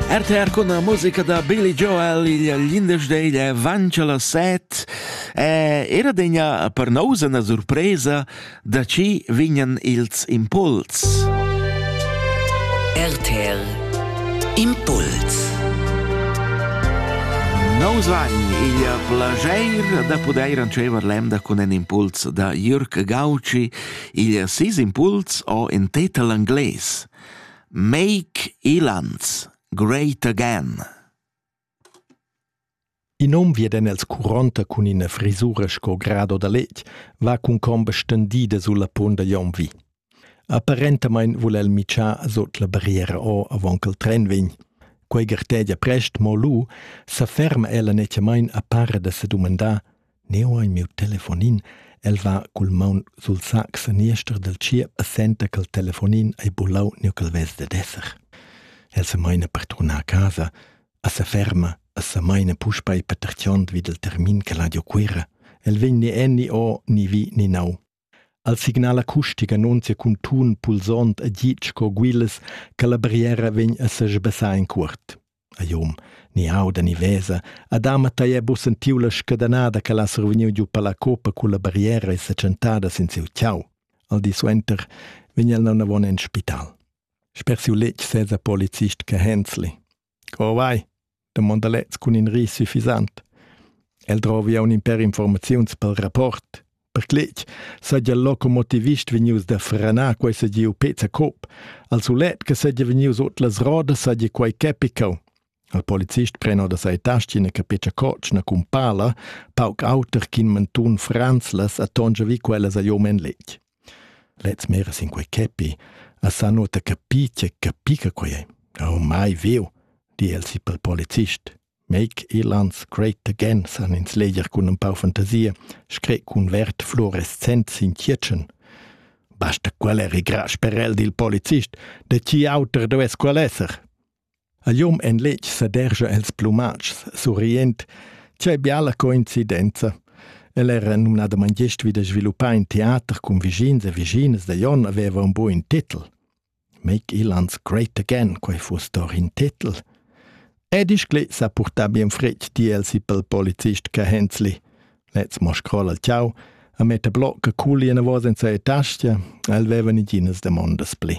RTR con la musica da Billy Joel il l'indesch è avanti alla set e era degna per nous una surpresa da ci vignan ils impuls. RTR Impuls Nous van il plager da poder ancever lembda con un impuls da Jürg Gauci il sis impuls o in tetal angles. Make Elanz great again! In hom viedan els curonta cun ina frisura sco grado da letg, va cun comba stendida sulla punt da Jon vi. Apparentamain vul el mitschar sut la barriera o avant ch'el tren vegn. Quei gartegia prest, mo lu sa ferma ella netgamain a para da sedumandar Neu ein miu telefonin. El va cul maun sul sac seniester dal tschiep e senta ch'el telefonin ei bulau ni ch'el vess dad esser. El se meina per turnar a casa, a se ferma e se meina puspei petertiond vid il termin che l'ha giu Cuira. El vegn ni en ni o, ni vi ni nau. El signal acustic annunzia cun tun pulsond e git sco guilas che la barriera vegn a sesbessar in cuort. A Jom, ni auda ni vesa, Adama tei ha bu sentiu la scadanada che l'ha survegniu giu palla copa culla barriera e seccentada sin siu ciau. Al di suenter vegn el naunavon en spital. Sper siu letg sesa polizist che Hensli. Co vai? domonda lez cun in ris suffisant. El drovi aun in per informaziuns pel rapport. Per cletg saja locomotivist vegnius da franar quei sa giu pezza cop. Al sulet che saja vegnius ot las rodas saja quei capicau. Il polizist preno da sei tastina che pecia cocna cun pala, pauc auter ch'in mentun franzlas attongia vi quellas a jomen letg. Lez mira sin quei capi e sa nuota capir tgei capica quei ei. Oh mai viu, di el si pel polizist. Make Elans great again, san ins leger cun un pau fantasia, scret cun verd fluorescent sin tgietschen. Basta quel eri gra sperel dil polizist, de ti auter dues quel esser. A liom en letg sedergia els plumatschs, surriend. Tgei biala coincidenza! El era numnadamain gest vid da sviluppar in teater cun vischins e vischinas da Jon aveva un buin titel. Make Ilands Great Again, quei fuss doch in titel. Ed ischli sa purtar bien fretg di el si pel polizist che Hensli. Lez mo scrolla il ciao, a metta bloc che culi en vos en sa tastia, el veva niginas demondas pli.